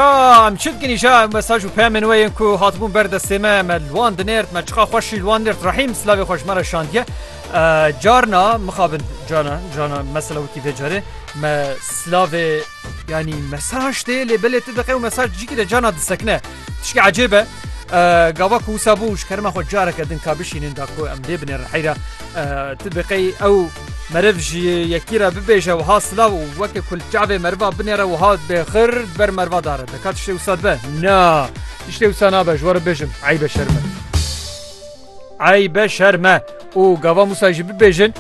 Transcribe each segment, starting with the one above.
Aa em çi dikin îşa em mesaj û peyamên we yên ku hatibûn ber destê me me li wan dinêrt me çiqa xweş jî li wan nêrt Rehîm silavê xwe ji me re şandiye carna mixabin cana cana mesela wekî vê carê me silavê yanî mesaj tê lê belê tu diqe û mesaj cikî de cana disekine tişkî ecêbe gava ku wisa bû ji kerima xwe careke din ka bişînin da ku em lê binêrin heyra tu biqey ew Meriv ji yekî re bibêje wiha silav û weke ku li çavê meriva binêre wiha bêxir di ber meriva da re dika tiştê wisa dibe? Na, tiştê wisa nabe ji we re bêjim eybe şerm e. Eybe şerm e û gava Mûsa jî bibêjin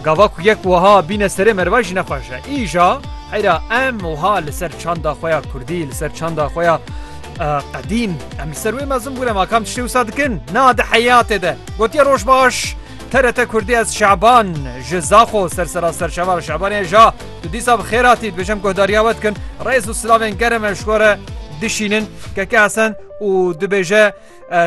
gava ku yek wiha bîne serê meriva jî ne xweş e. Îja heyra em wiha li ser çanda xwe ya kurdî li ser çanda xwe ya qedîm em li ser wê mezin bûne ma kam tiştê wisa dikin? Na di heyatê de gotiye roj baş. TRT Kurdî Ez Şaban ji Zaxo sersera serçevar Şabanê ja tu dîsa bi xêr hatî dibêjim guhdariya we dikin rêz û silavên germ ev ji we re dişînin keke hesen û dibêje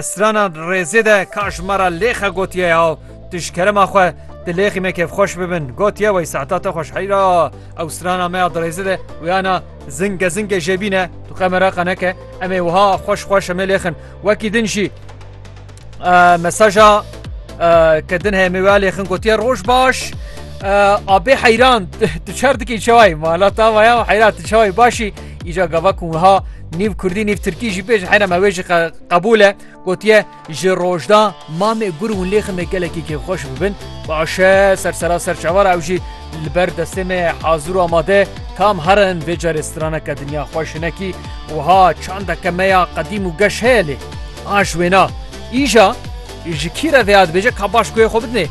sirana rêzê de ka ji me re lêxe gotiye ya tu ji kerema xwe di lêxî me kêfxweş bibin gotiye wey saeta te xweşheyra ew sirana me ya dirêzê de wiyana zingge zingge jêbîne tu qemera qeneke em ê wiha xweş xweş em ê lêxin wekî din jî Mesaja ke din heye mêwelê xin gotiye roj baş. Abê heyran tu çer dikî çewayî mala ta maya heyran tu çewayî başî îca gava ku wiha nîv kurdî nîv tirkî jî pêj heyna me wê jî qebûl e gotiye ji rojda mamê gur hûn lê xime gelekî kêfxweş bibin başe ser sera ser çavara ew jî li ber destê me hazir û amade tam herin vê carê straneke dinya xweş hinekî wiha çandeke me ya qedîm û geş heye lê Aş wêna, îja ji kî re veya dibêje ka baş goyê xwe bidinê.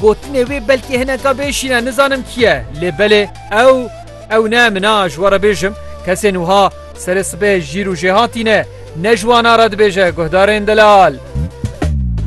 Gotinê wê belkî hineka bê şîn e, nizanim kî ye. Lê belê ew, ew ne min a, ji we re bêjim, kesên wiha serê sibê jîr û jêhatî ne. Ne ji wan a re dibêje, guhdarên delal.